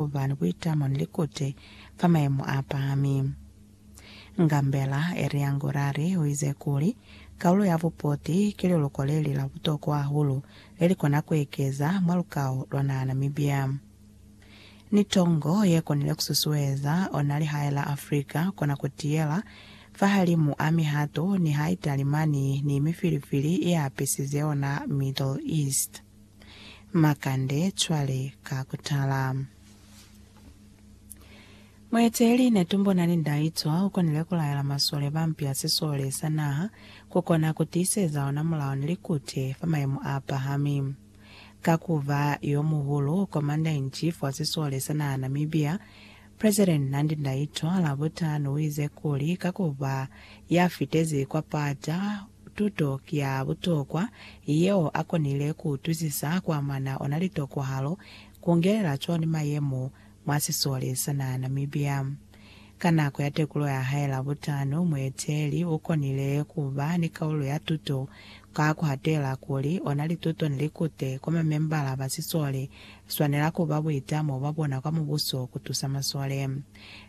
ku ba ni buitamo ni likuti fa mayemo a pahami. Ngambela Elia Ngurari u ize kuli, Kaulo ya bupoti ki liluko le li la butokwa hahulu le li kona ku ekeza mwa lukao lwa naha Namibia. Ni tongo ye konile ku susueza ona lihae la Afrika ku kona ku tiyela fahalimu a mihato niha Italimani ni mifilifili i apisize ona Middle East. Makande cwale ka kutala. Mueteeli Netumbona Lindaitwa ukonile kulaela masole ba mpi ya sisole sa naha kukona kutiiseza ona mulao ni likute fa mayemo aapahami. Ka kuba yomuhulu Commander-in-Chief wa sisole sa naha Namibia, President Nandi Ndaitwah Labutanu uize kuli ka kuba yafitezi kwa pata, Tuto ki ya butokwa yeo a konile ku utwisisa kwa mwana ona litokwahalo, ku ngelela cwani mayemo mwa sisole sa naha Namibia. Ka nako ya tekulo ya hae Labutano, mueteeli u konile ku ba ni kaulo ya tuto ka ku hatela kuli ona lituto ni likute kwa mamembala ba sisole swanela ku ba buitamo bwa bona kwa mubuso ku tusa masole.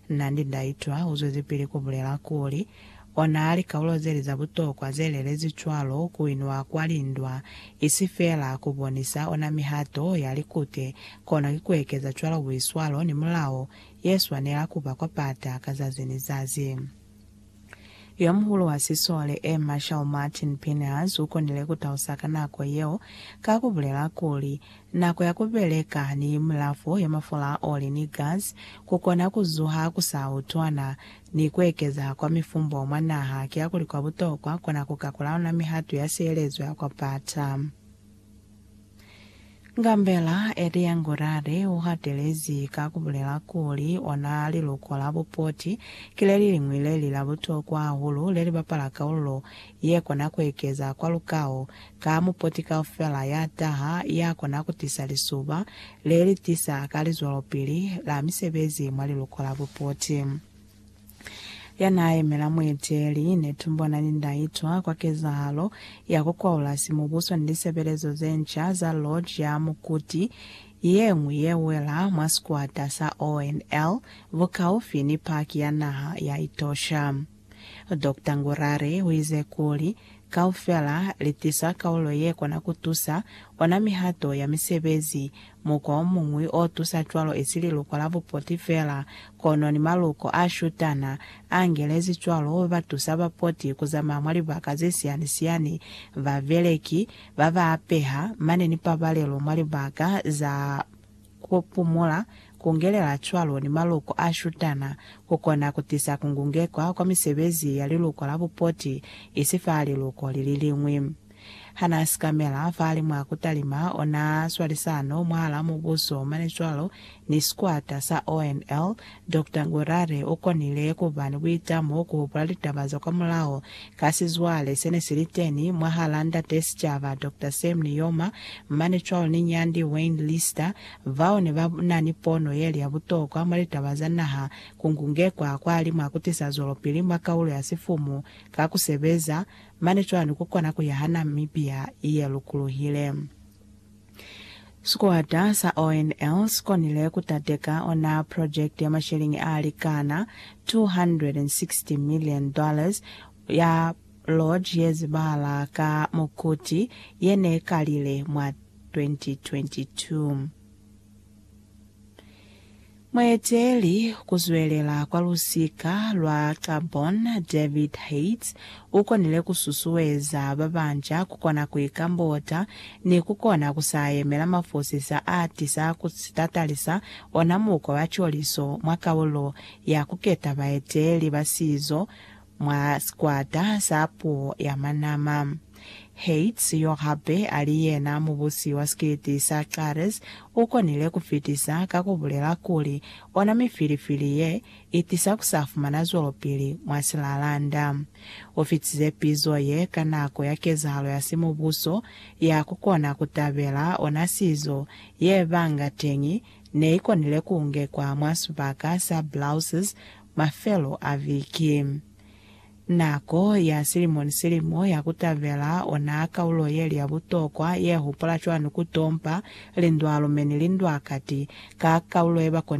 Nandi Ndaitwah u zwezipili ku bulela kuli, Ona likaulo zeli za butokwa ze lelezwi cwalo ku inwa kwa lindwa, isi fela ku bonisa ona mihato ya likute, kono ki ku ekeza cwalo buiswalo ni mulao ye swanela ku ba kwa pata ka zazi ni zazi. Yomuhulu wa sisole A. Marshal Martin Pinehas u konile ku tausa ka nako yeo ka ku bulela kuli, Nako ya ku beleka ni milafo ya mafula a oli ni gasi ku kona ku zuha ku sa utwana, ni kuekeza kwa mifumbo mwa naha kiakuli kwa butokwa kona kuka kulaula mihatu ya sielezo ya kwa pata. Ngambela Edeangorade uhatelezi ka kubulela kuli, ona liluko la bupoti ki leliliñwi leli la butokwa hahulu lelibapala kaululo Ye kona ku ekeza kwa lukao ka mupoti kaufela ya taha, ya kona ku tisa lisuba le li tisa ka lizwelopili la misebezi mwa liluko la bupoti. Ya n'a yemela mueteeli ne tumbo na ni nda itwa kwa kezahalo ya ku kwaula simubuso ni lisebelezo ze nca za Lodge ya Mukuti ye ñwi ye wela mwa sikwata sa ONL bukaufi ni Paki ya Naha ya Etosha. Doctor Ngurari u ize kuli, Kaufela li tisa kaulo ye kona ku tusa, ona mihato ya misebezi. Mukwa o muñwi o tusa cwalo i si liluko la bupoti fela, kono ni maluko a shutana. A ngelezi cwalo, ba tusa bapoti ku zamaya mwa libaka ze siyani-siyani, babeleki, ba ba apeha, mane ni pabalelo mwa libaka za. Ku pumula, ku ngelela cwalo ni maloko a shutana, ku kona ku tisa ku ngungekwa kwa misebezi ya liluko la bupoti, isi fa liluko li li liñwi. Ha n'a sikamela fahali mwa ku talima, o n'a swalisano mwahal'a Mubuso mane cwalo ni sikwata sa ONL Doctor Ngurare u konile ku ba ni buitamo ku hupula litaba za kwamulaho ka sizwale se ne si li teni mwahal'a Ndate Sicaba Doctor Sam Nujoma mane cwalo ni Nyandi Wayne Lister, bao ne ba na ni pono ye li ya butokwa mwa litaba za naha ku ngungekwa kwa li mwa ku tisa zwelopili mwa kaulo ya sifumu ka ku sebeza mane cwalo ni ku kona ku yaha Namibia ye lukuluhile. Sikwata sa ONL si konile ku tateka ona project ya masheleñi a likana $260 million ya lodge ye zibahala ka mukuti ye ne kalile mwa 2022. Mueteli kuzwelela kwa lusika lwa Gabon David Haitz ukonile kususueza babanca kukona kuikambota ni kukona kusayemela mafosisa aatisa kutatalisa ona mukwa wa coliso mwa kaulo ya kuketa baeteli ba sizo mwa sikwata sa puo ya Manama. Heitz, yo hape a li yena mubusi wa sikiti sa Xares, u konile ku fitisa ka ku bulela kuli, Ona mifilifili ye i tisa ku sa fumana zwelopili mwa silalanda. U fitize pizo ye ka nako ya kezahalo ya simubuso ya ku kona ku tabela ona sizo ye banga teñi ne i konile ku ngekwa mwa sibaka sa Blouses Mafelo a viki. Nako ya silimo ni silimo ya ku tabela ona kaulo yeli ya butokwa ye hupola cwani ku tompa lindwa-lume ni lindwa-kati ka kaulo ye ba konile ku i fumana.